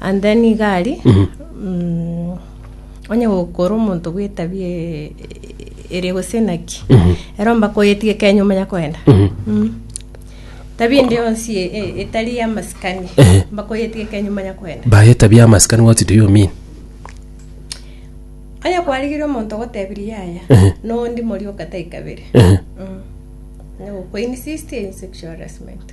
And then iga aria mm, onye gokora omonto bw'etabi e- e- ere gose naki ero mbakoyetige kenya omanya koenda Mm. tabi ende yonsi e- e- etari yamasikani Ehe. mbakoyetige kenya omanya koenda baye tabi amasikani what do you mean onye kwarigire omonto gotebirie yaya Ehe. nondi morioka taikabere Ehe. Mm. onye gokoinsist in sexual harassment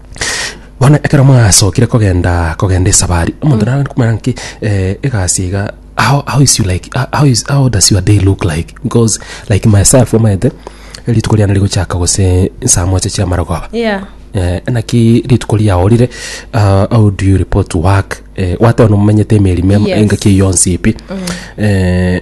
Bono ekero mwasokire kogenda kogenda esabari, omonto naro komanya ng'aki egasi iga how how is you like ho- how is how does your day look like bcos like myself omanyete rituko riane rigochaka gose saa mocha chia amarogoba Yeah. eh, naki rituko riaorire ah, how do you report to work eh, gwateba nomomenyete emerimo emo Yes. engaki eyio yonsi pi eh,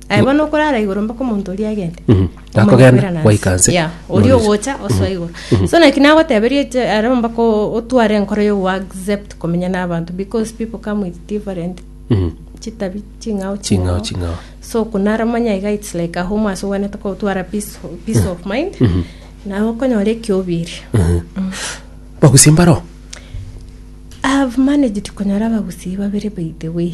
Aye bono okorara igoro mpaka omonto oria agende Mhm. Omanya Akogenda, kwera nansi. gwaika nse. Yeah, oria Norise. ogocha osoa igoro so naki nagoteberie je- arabo mpaka o- otware enkoro yo accept komenya n'abanto because people come with different Mhm. chitabi ching'ao Ching'ao, ching'ao. so kunaramanya iga its like a home ase obwanete kotwara peace, peace of mind naye okonyora ekiobiri Bagusia mbaro. I've managed konyora abagusii babere by the way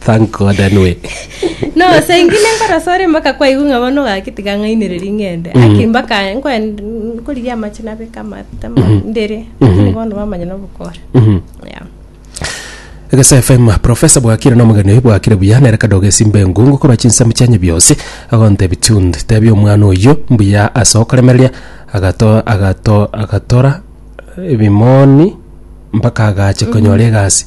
Thank God anyway. No, saa ingine nkorasa ore mpaka kwaigwa ng'a bono gaki tiga ng'ainereria ng'ende. Aki mpaka nkwen- nkorigia amache nabeka amate ma- ndere. Lakini bono bamanya nobokora. Mhm. Yeah. Egesa FM Professor bwakire na omogeni oyi bwakire buya nere kadogo esimba engungu korwa chinsemo chianye biosi agontebi tunde tebi omwana oyio mbuya ase okoremereria agato agato agatora ebimoni mpaka agache konyora egasi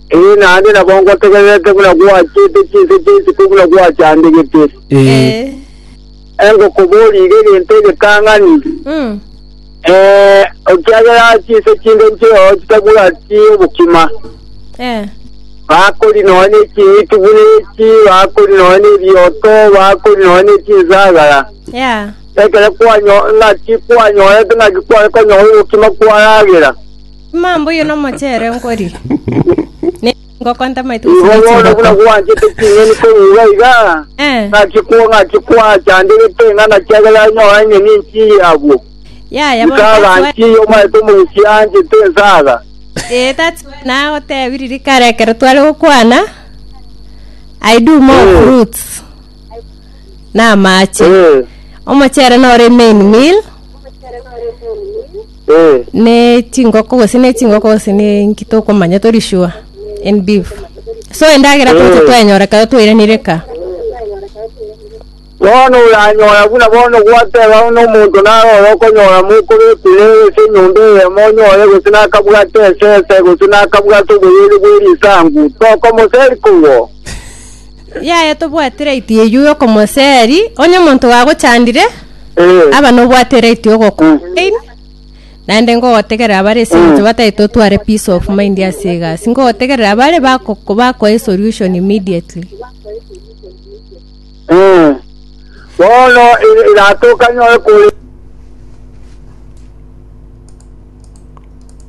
Ee, naende nabo ngotegererete buna gwachiete chinse chi'enchiko buna gwachandegete. Ee. Engokoboria iga egento egetang'ani, Mm. ee, ekiagera chinse chinde nchireo chitabwati obokima, Eh. bakori nonya n'eching'iti buna echi, bakori nonya n'ebioto, bakori nonya n'echinsagara. Yeah. Ekero kwanyo- ng'aki kwanyorete ng'aki kware konyora obokima kwaragera, Omwamba oyo nomochere nkori, ne chingoko ntamaiti gose Igo ne bono buna chingoko. gwanchete ching'eni korigia iga, Eh. ng'aki kwa ng'aki kwachandegete ng'a ng'aki agere anyore eng'eni enchiiya abwo. Yaya bono Nkaga tatuae- nchiiya omanyete omogusi anchete ensaga. Eh, tatuae nagotebia riria kare ekero tware gokwana, I do more Eh. fruits na amache. Eh. Omochere nore main meal. ne chingoko gose ne chingoko gose ne inki tokomanya tori sure en beef so endagera toche twenyora ekero twairanire ka bono oranyora buna bono gwateba buna omonto naro oro okonyora mokobekure ase enyomba eyemo onyore gose nakabwate esese gose nakabwate oboyeri bw'erisangu tokomoseri kogwo Yaya tobwati right eyio yokomoseri onye omonto gagochandire Eh, aba nobwate right yogokora pain naende ngogotegerera bare ase eng'encho batari totware peace of mind ase egasi ngogotegerera bare bako- bakoe solution immediately eh. Bono ira- iratoka nyore kore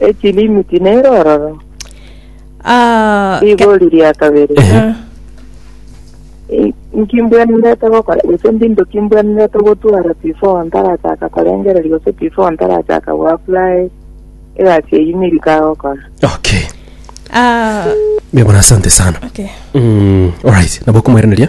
Echilimi tineire ororo. Ah, ke- Rigori ria kabere. Ehe. I- Nkimbwenerete gokora gose ndi into kimbwenerete gotwara before ntarachaka korengereria gose before ntarachaka goapply egasi eyio nirika gokora. Okay. ah, Mia bwana asante sana. okay. Mm, alright. Nabo kumairaneria.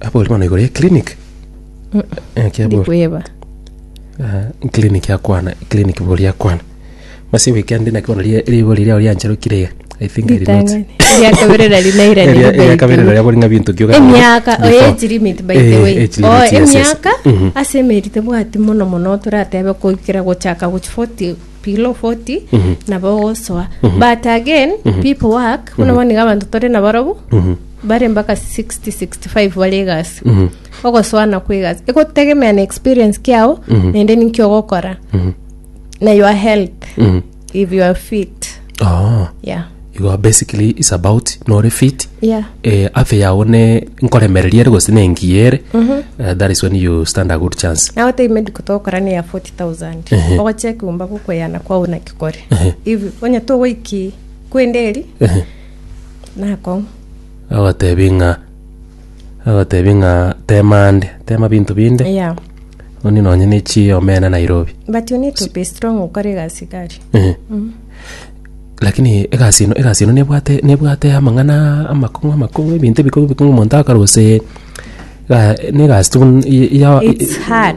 Abori bono igoro ya clinic. Ekia bori. Ndikweba. Ah, clinic akwana, clinic bori akwana. Masi wiki ande naki bono rie- rigo riria orianchero kirega. I think I did not. Ritang'ani. Riakabere nari naira Eria- neri eria kabere baitire. naria bori ng'a binto kioka. emiaka oyo Before. age limit by the Eh, way age Oh, limit, yes, yes. emiaka Mhm. ase emerite bwati mono mono toratebe koikera gochaka gochi 40 below 40 nabo ogosoa but again people work buna boniga abanto tore na barobu bare mpaka 60 65 bare egasi ogosoa nakwa egasi egotegemea na experience kiao naende ninki ogokora na your health if you are fit Oh, yeah you are basically is about nore fit yeah eh, afya yao ne nkoremereria ere gose nengiya ere Eh, that is when you stand a good chance now take medical togokora ne ya 40 thousand Ehe. ogochia ekeumba gokweyana kwao naki kore Ehe. if onye togoiki kwende eri Ehe. nakong'u agotebi ng'a agotebi ng'a tema ande tema binto binde yeah oni nonye ne chi omena nairobi but you need to be strong okore egasi gari Ehe. lakini egasi eno egasi eno nebwate nebwate amang'ana amakong'u amakong'u ebinto ebikong'u ebikong'u omonto akare gose ga- ne egasi tun- ya- ya- it's hard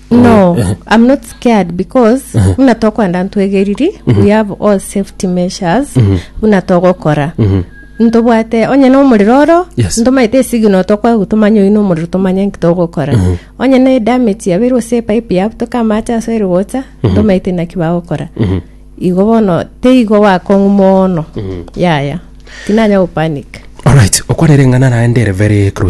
No, I'm not scared because buna tokwenda ntwegeriri, we have all safety measures buna togokora. Ntobwate onye na omorero oro, Yes. ntomaite esigino tokwagu tomanye oyu na omorero tomanye nki togokora. Onye na edamage yabeirwe ase epipe yabutoka amache ase ere gocha, ntomaite naki bagokora. Igo bono teigo gwakong'u mono. Yaya. Tinanya gopanic. Alright, okwarere ng'a naraendere very crucial.